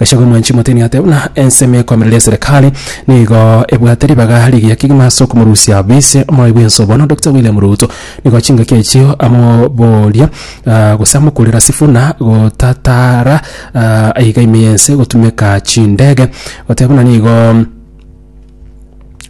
Gachagua mwanchi motini ate buna ensemo ekoamerera eserekari nigo ebwate ribaga rigiya kegima ase okomorusia bise omorai bwense obono Dokita William Ruto nigo chingaki echio amoboria ah, gose amokurera Sifuna gotatara ah, aiga ime yense gotumeka chindege goteba buna nigo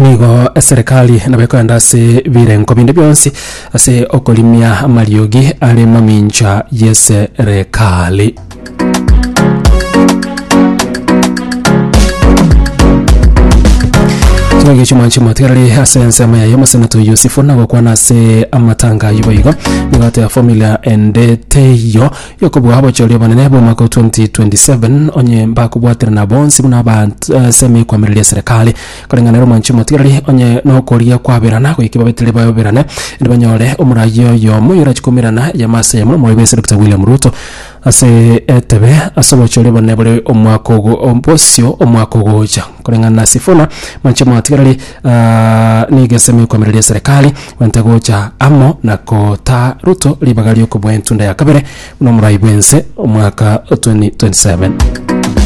nigo eserekari nabo ekoenda ase birengo binde bionsi ase okorimia amariogi are mamincha y'eserekari kino gicho mwanchi motigarari ase ensemo yaye omoseneto yusufu nagokwana ase amatanga aywo boigo nigo ateba formula ende teiyo Y'okobua obochori obonene bw'omwaka o 2027, onye mbakobwaterana bonsi buna abasemi ekwamireria eserekari, koreng'ana ere omwanchi omotigareri, onye nokorigia kwaberana, goika babetire bayoberane, erio banyore omoraia oyomo oyorachie koumerana eyemo ase eyemo nomoibi ase Dr. William Ruto ase etebe ase obochori obonene bore omwaka ogo bosio omwaka ogocha. Koreng'ana na Sifuna, mwanchi omotigareri, nigo esemi ekwamireria eserekari. Bwenta gocha amo na kotaa Ruto ribaga ri'okoboa entunda ya kabere buna omorai bw'ense omwaka 2027.